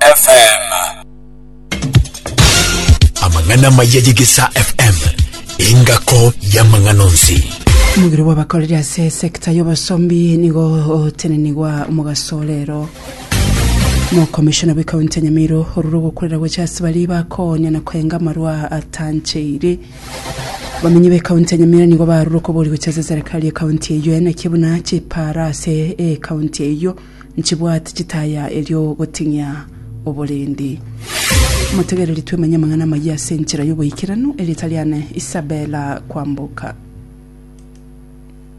FM. Amang'ana amaya y'Egesaa FM engako y'amang'ana onsi. Omogiro bw'abakoreri ase esekta y'obosombi nigo otenenigwa omogaso orero mokomishona bw'ekaunti ya nyamiro orure ogokorera gocha ase baria bakonya na koenga amarwa atancheire bamenyi b'ekaunti ya nyamira nigo barure okobori gocha ase serikali y'ekaunti eyio enaki buna chipara ase ekaunti eyio nchibwati chitaya erio goting'ia oborendi. Motegereri twemanye amang'ana amayia ase enchera y'oboikeranu, erieta riane Isabella Kwamboka.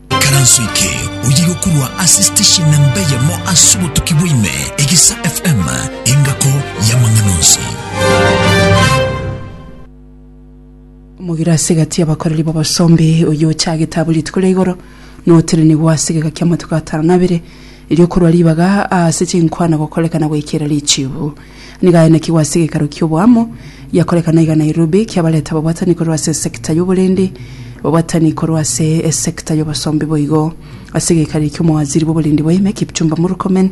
Karanso eke oye gokorwa ase station namba eyemo ase obotuki bwa ime, Egisa FM, engako y'amang'ana onsi. Omogire ase egati y'abakoreri b'obosombe, oyio ochagete abwo rituko ria igoro, notenenigwe ase egeka ki'amatuko atano na abere, erio okorwa ribaga ase chinkwana gokorekana goikera richibu. Nigo aenekigwe ase egeikaro ki'oboamo, giakorekana iga Nairobi, kiabareta babwatani korwa ase esekta y'oborendi, babwatani korwa ase esekta y'obosombe boigo. Ase egeikaro eki'omowaziri bw'oborendi bwa ime, Kipchumba Murkomen,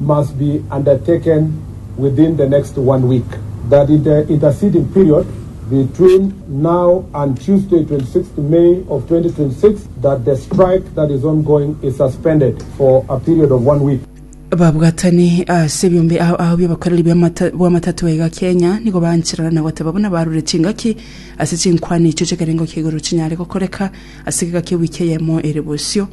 must be undertaken within the next one week, that in the interceding period between now and Tuesday 26th May of 2026 that the strike that is ongoing is suspended for a period of one week. Babwatani ase ebiombe ao ao bi'obokoreri bw'amata- bw'amatatwe iga Kenya nigo bancherana na goteba buna barure chingaki ase chinkwana echio chi'ekerengo kia igoro chinyare gokoreka ase egeka kia ewiki eyemo ere bosio.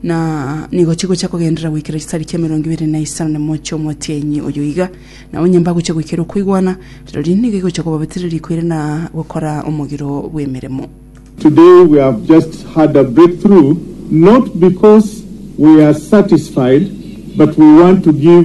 na nigo chigocha kogenderera goikera chisari chia emerongo ebere na isano na emo chi'omotienyi oyo iga, na onye mbagocha goikera okoigwana, rirorio nigo igocha kobabeterera riko ere na gokora omogiro bw'emeremo. Today we have just had a breakthrough not because we are satisfied but we want to give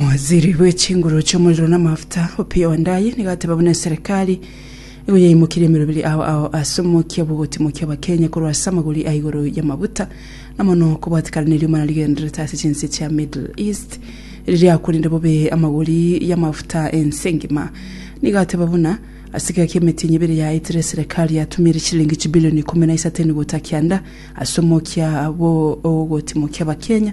Omowaziri bwe chinguru chi'omorero na amafuta, Opiyo Wandayi, nigo ateba buna eserekari nigo yaimokirie emeroberi ao ao ase omokia bw'ogotimokia Abakenya korwa ase amagori a igoro y'amabuta, na mono kobwatikana neriuma narigendererete ase chinse chia Middle East ririakorire bobe amagori y'amafuta ense engima. Nigo ateba buna ase egeka y'emetinyi ebere yaetire eserekari yatumire chilingi chibilioni ikomi na isato enigo takianda ase omokia bw'ogotimokia Abakenya,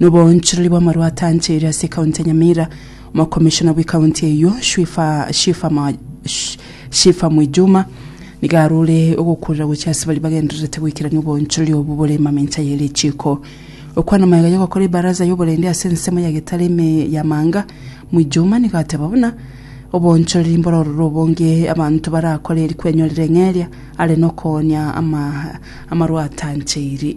na oboonchorori bw'amarwa atanchaire ase ekaunti ya Nyamira, omokomishona bw'ekaunti eyio Shwifa Shifa Ma- Sh- Shifa Mwijuma nigo arore ogokurera gochia ase baria bagendererete goikerania oboonchorori obo bore mamincha ye richiiko. Okwana magega y'ogokora ebaraza y'oborende ase ensemo ya Getari ime ya Manga, Mwijuma nigo ateba buna oboonchorori mboro ororo obonge abanto barakore eri kwenyorera eng'eria are nokoonia ama, amarwa atanchaire.